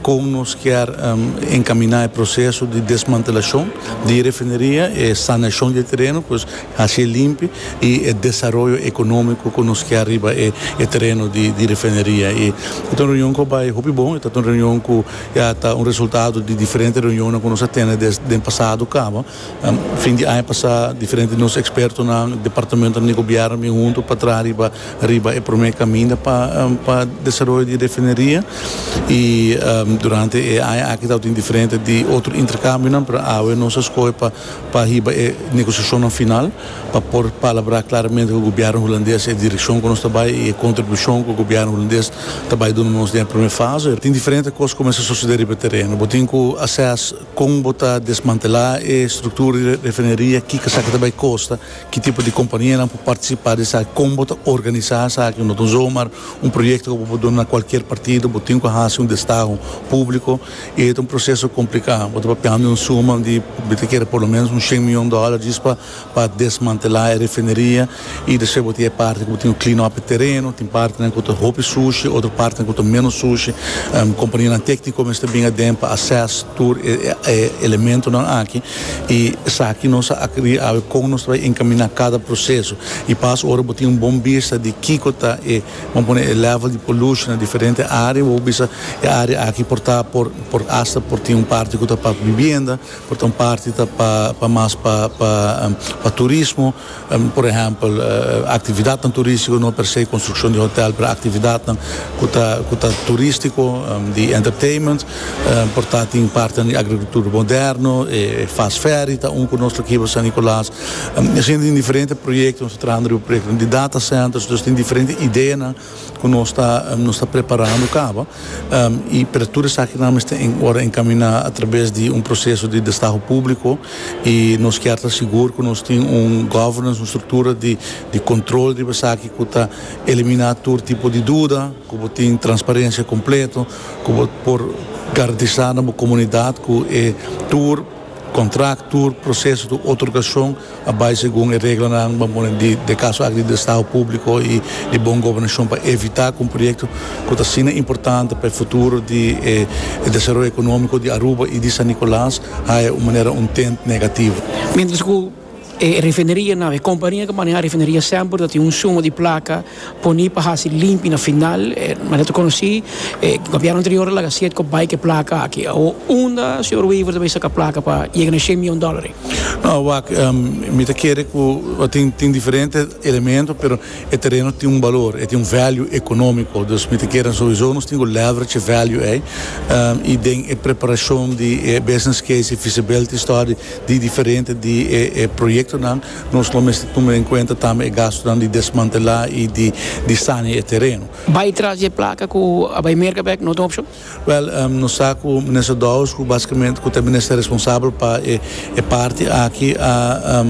Kon nos kier enkaminá e proseso di desmantelashon di e refineria, e sanashon di e tereno ku hasi e limpi i e desaroyo ekonómiko ku nos kier riba e tereno di refineria. E ta un reunion ku a bai hopi bon, e ta un reunion ku ya ta un resultado di diferente reunionnan ku nos a tene den pasado kaba. Fin di aña pasá diferente di nos ekspertonan, departamentonan di gobièrnu bin huntu pa traha riba riba e promé kaminda pa pa desaroyo di e refineria. I durante e aña aki tabatin diferente di otro interkambionan pero awe nos a skohe pa pa hiba e negosiashonnan final pa por palabrá klaramente ku gobièrnu hulandes e direkshon ku nos ta bai i e kontribushon ku gobièrnu hulandes ta bai duna nos den e promé fase. Tin diferente kos ku kumesa sosodé riba e tereno. Bo tin ku assess. Kon bo ta desmantelá e struktura di refineria, kiko esaki ta bai kosta, ki tipo di kompanianan por partisipá di esaki, kon bo ta organisá esaki, no ta un zomaar un proyekto ku bo por duna na kualkier partido, bo tin ku hasi un destaho públiko i e ta un proseso kompliká. Bo ta papiando di un suma di bo ta kere por lo menos un shen miyon dòler djis pa. pa desmantelá e refineria i despues bo tin e parti ku bo tin ku clean up e tereno, tin partinan ku ta hopi sushi, otro partinan ku ta ménos sushi, kompanianan tékniko mester bin aden pa assess tur e e elementonan aki i esaki nos a akrí awe kon nos ta bai enkaminá kada proseso i pas ora bo tin un bon bista di kiko ta e bon pone e level di pollution na diferente área bo bisa e área aki por ta por por asta por tin un parti ku ta pa bibienda, Por ta un parti ta pa mas pa turismo, por ehèmpel aktividatnan turístiko, no per se konstrukshon di hotèl, pero aktividatnan ku ta ku ta turístiko, di entertainment, por ta tin partinan di agrikultur moderno, e fast ferry ta un ku nos ta kiba San Nicolas, asina tin diferente proyektonan nos ta trahando riba proyektonan di data centers, dus tin diferente ideanan cu nos ta nos ta preparando caba y pero tur esakinan mester en ora encamina a traves di un proceso di destaho publico y nos kier ta sigur cu nos tin un governance un structura di di control riba esaki cu ta elimina tur tipo di duda cu bo tin transparencia completo cu bo por garantisa na bo comunidad cu e tur Contract, tur proceso di otorgacion a bay segun e reglanan ban pone di e caso aki di Estado Publico y di Bon Gobernacion pa evita cu un proyecto cu ta asina importante pa e futuro di e desaroyo economico di Aruba y di San Nicolas haya un manera un tint negativo. Mientras cu E refinerianan, e kompania ku maneha refineria semper ta tin un suma di plaka poni pa hasi limpi na final. Manera ta konosí, e gobièrnu anterior a laga siet ku a bai ku e plaka aki. Awor unda señor Wever ta bai saka plaka pa yega na e shen mion dòlari? No, wak, mi ta kere ku tin tin diferente elemento, pero e tereno tin un balor, e tin un value ekonómiko. Dus mi ta kere souiso nos tin ku leverage e value ei i den e preparashon di e business case, e feasibility study. Di diferente di e proyectonan nos lo mester tuma den cuenta tambe e gastonan di desmantela y di saña e tereno. Bay tras di e placa cu a bay merca bek no ta un opcion? Wel, nos sa cu Minister Dowers, cu basicamente cu ta e Minister responsabel pa e parti aki, a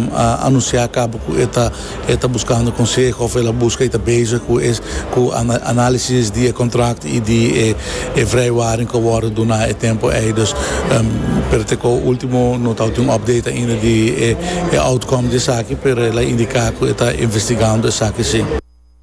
anuncia caba cu e ta. E ta buskando konseho of el a buska, e ta bezig ku e ku análisis di e kontrakt i di e vrijwaring ku a wòrdu duna e tempu ei. Dus, pero te kau último no ta tin un update ainda di e outcome di esaki, pero el a indiká ku e ta investigando esaki sí.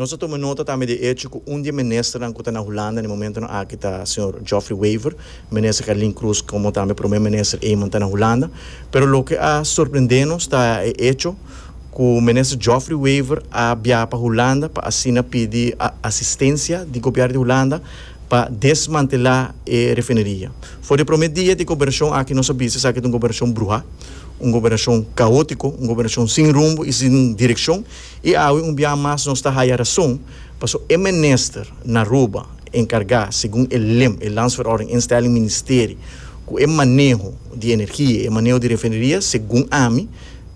Nos a tuma nota tambe di e echo ku un di e ministernan ku ta na Hulanda na e momentonan aki ta señor Geoffrey Wever, Minister Carlin Cruz komo tambe Prome Minister Eman ta na Hulanda. Pero loke a sorprende nos ta e echo ku Minister Geoffrey Wever a biaha pa Hulanda pa asina pidi asistencia di Gobièrnu di Hulanda pa desmantela e refineria. For di e prome dia di gobernacion aki nos a bisa esaki ta un gobernacion bruha, un gobernacion caótico, un gobernacion sin rumbo y sin direccion. I awe un biaha mas nos ta haya rason, paso e minister na Aruba encarga, segun e lim, e landsverordening instelling ministeri, cu e maneho di energia, e maneho di refineria, segun ami,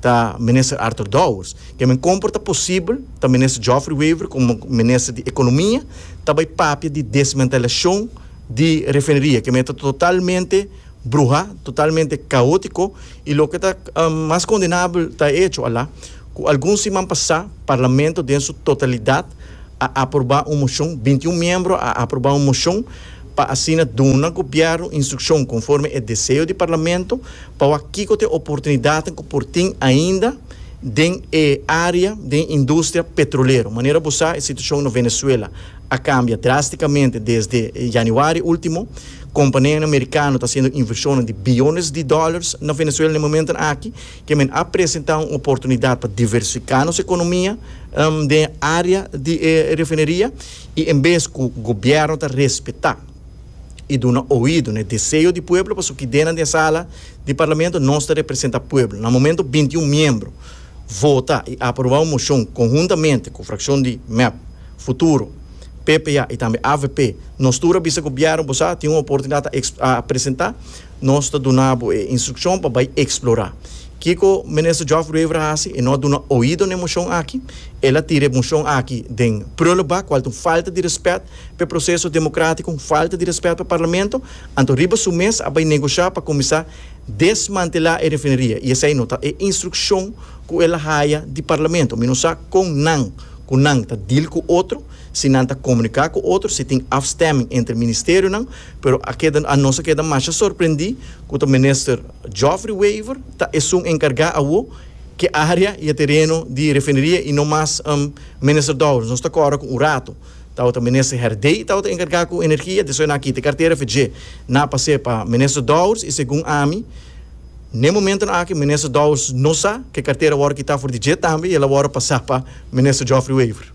ta minister Arthur Dowers. Ke men compor ta posibel ta minister Geoffrey Wever como minister di economia ta bay papia di desmantelacion di refineria, ke men ta totalmente bruha, totalmente caotico, i loke ta mas condenabel ta e hecho ala, Ku algun siman pasá Parlamento den su totalidat a aprobá un moshon, binti un miembro a aprobá un moshon pa asina duna Gobièrnu instrukshon konforme e deseo di Parlamento pa wak kiko ta e oportunidatnan ku por tin ainda den e área den industria petrolero. Manera bo sa e situashon na Venezuela a kambia drástikamente desde yanüari último. Kompaneanan merikano ta hasiendo invershonnan di biyones di dòlars na Venezuela na e momentonan aki. Kemen a presenta un oportunidat pa diversifiká nos ekonomia den e área di e refineria i en bes ku gobièrnu ta respetá i duna oido na e deseo di pueblo pasobra ku den den sala di parlamento nos ta representá pueblo. Na momentu binti i un miembro vota i aprobá un moshon konhuntamente ku frakshon di mep, Futuro, PPA i tambe avp nos tur a bisa gobièrnu bo sa tin un oportunidat a presentá, Nos ta duna bo e instrukshon pa bai eksplorá. Kiko Minister Geoff Ruever a hasi? E no a duna oido na e moshon aki. El a tira e moshon aki den prulubak, kual ta un falta di rèspèt pa e proseso demokratiko, un falta di rèspèt pa Parlamento. Anto riba su mes a bai negoshá pa kuminsá desmantelá e refineria. I esei no ta e instrukshon ku el a haya di Parlamento. Mi no sa kon nan ku nan ta deal ku otro, si nan ta komuniká ku otro, si tin afstemming entre ministerionan. Pero a keda anos a keda masha sorprendí ku ta Minister Geoffrey Wever ta esun enkargá awo ke área i e tereno di refineria i no mas Minister Dowers. Nos ta kòrda ku un ratu tabata Minister Herdey tabata enkargá ku energia, despues nan a kita e kartera fe dje na pas'é pa Minister Dowers i segun ami n'e momentonan aki Minister Dowers no sa ke kartera a wòrdu kitá for di dje tambe i el a wòrdu pasá pa Minister Geoffrey Wever.